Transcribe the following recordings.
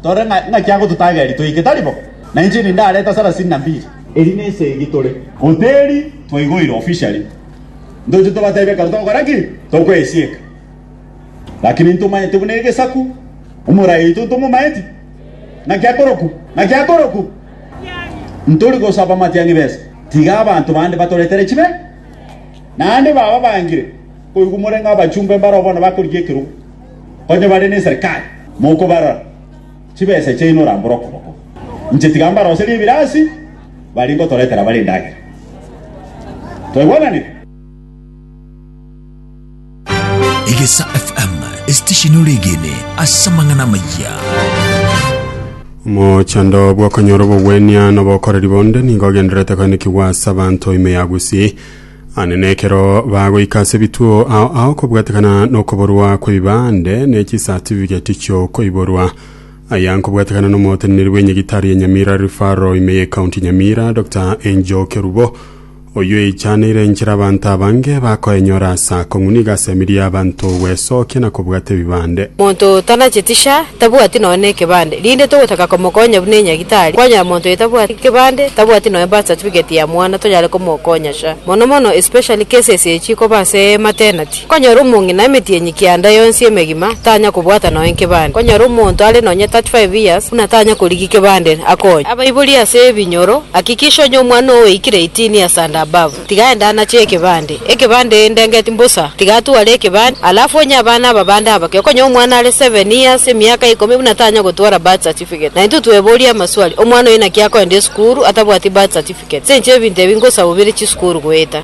Tore ng'aki agototageri toike, tari bo? Na inche nindareta sarasini na mbiri. Eri nesegi tore. Hoteri twaigoire officially. Ntoche tobatebie ekero togokora ki? Tokoesieka. Lakini ntomanyete buna egesaku. Omorai oito ntomomaeti? Naki akoroku? Naki akoroku? Ntori gosaba matiang'i besa. Tiga abanto bande batoretere chibe. Naende baba bangire koigwa more ng'a abachumba mbaro bono bakorigia ekerogo. Onye bare neserikari mokobarora, chibesa chiaino orambore okoboko. Inche tiga mbaroserie ebirasi, baria ngotoretera bare endagera. Twaigwananire? Egesa FM, esitesheni ore egene ase amang'ana amaya. Omochando bw'okonyora obogwenia na obokoreri bonde nigo ogendererete koenekigwa ase abanto ime ya Gusii. Anene ekero bagoika ase ebituo ao aokobwatekana nokoborwa kw'ebibande ne chisatifiketi chi'okoiborwa, aya nkobwatekana n'omoteneneri bw'enyagitari ya Nyamira Referral ime ye County Nyamira, Doctor Angel Kerubo, oyio eichaneire enchera abanto abange bakoenyora ase akong'u nigo asemerie abanto gwesokia na kobwata ebibande. Monto tanacheti sha tabwati nonya nekebande, rinde togotaka komokonya buna enyagitari, kwanyora monto oyo tabwati kebande, tabwati nonya birth certificate ya mwana, tonyare komokonya sha. Mono mono especially cases eye chikoba ase maternity, okonyora omong'ina emetienyi kianda yonsi emegima tanya kobwata nonya nkebande, okonyora omonto are nonya 35 years buna tanya korigia kebande akonye. Abaibori ase ebinyoro, Hakikisha onye omwana oo oikire 18 years and above. Tiga aende anache ekebande. Ekebande inde ngeti mbosa. Tiga atware ekebande, alafu onye abana aba bande abake. Okonye omwana are seven years, emiaka ikomi, buna tanya gotwara birth certificate. Na intwe tweboria amaswali, omwana oyo naki akoenda esukuru atabwati birth certificate? Ase inche ebinto ebi ngosaba obere chisukuru goeta.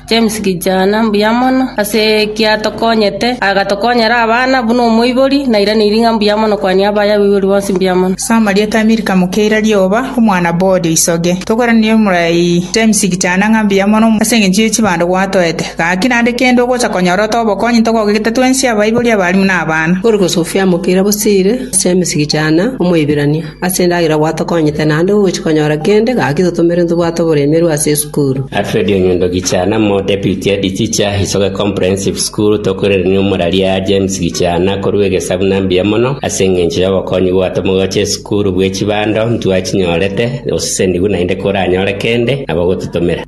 James kijana mbuya mono ase ekiatokonyete, agatokonyera abana buna omoibori, nairaneiri ng'a mbuya mono kwania abaya abaibori bonsi mbuya mono. Soma rieta Milka mokeira rioba, omwana b'Ode isoge. Tokoranire omorai James kijana ng'a mbuya mono ase engencho ye chibando gwatoete. Gaki naende kende ogocha konyora ote obokonyi ntogogegete twensi abaibori abalimu na abana. Origo Sofia mokeira bosire James kijana omoibirania, ase endagera gwatokonyete naende gogochi konyora kende, gaki totomere ntobwate oboremeru ase Yeso. School. Alfred Onyondo Gichana mo Deputy Head Teacher, Isoge Comprehensive School, Tokoirerania omorari aa James Gichana korwa egesabu na mbuya mono ase engencho y'obokonyi bwato mogocha esukuru bwe chibando ntwachinyorete, osesenigwe naende koranyore kende nabo gotutomera.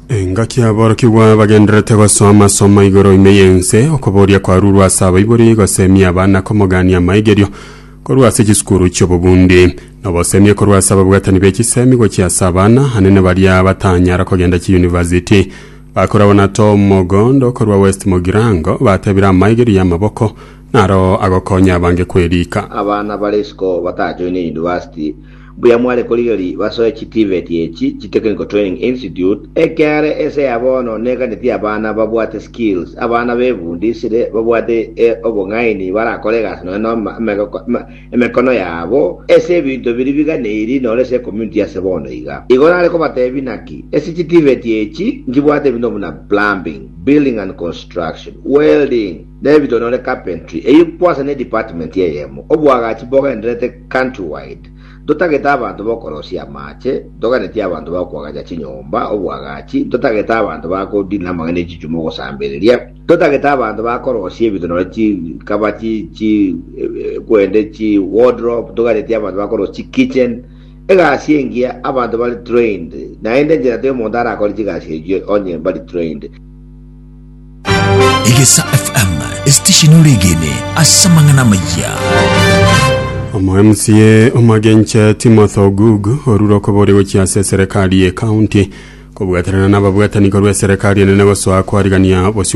Engaki aborokigwa bagendererete gosoma somo igoro ime y'ense, okoboria kwarurwa ase abaibori, gosemiia abana, komogania amaigerio, korwa ase chisukuru chi'obobundi, na obosemi korwa ase ababwatani be chisemi gochia ase abana anene baria batanyara kogenda chiyunivasiti. Bakoragwa na Tom Mogondo korwa West Mogirango batebire amaigerio y'amaboko naro agokonya abange kweriika. Abana bare isiko batajoine yunivasiti Mbuya mware korigeria basoe chitivet echi chi Technical Training Institute, ekiare ense ya bono neganeti abana babwate skills, abana befundisire babwate e obong'aini barakore egasi nonya na emegoko emekono yabo ase ebinto biria biganeiri noro ase ecommunity ase bono iga. Igo nare kobatebia naki, ase chitivet echi nkibwate ebinto buna plumbing, building and construction, welding, na ebinto nore carpentry, eyio kwase ne department eyemo, obwagachi bogendererete, Countrywide, Ntotagete abanto b'okorosia amaache, ntoganetie abanto ba koagacha chinyomba, obwagachi, ntotagete abanto ba kodiina amang'ana e chichumi ogosambereria, ntotagete abanto ba korosia ebinto nonye chi kaba chi chi kwende chi wardrobe, ntoganetie abanto ba korosia chi kitchen, egasi engiya abanto bare trained, naende enchera toyo omonto arakore chigasi echio onye mbari trained. Egesa FM esitishini oregene ase amang'ana amayia. Omo MCA omagenche Timothy Ogugu orure okobori gochia ase eserekari ye county kobwaterana nababwatani korwa eserekari enene gosoa kwarigania bosio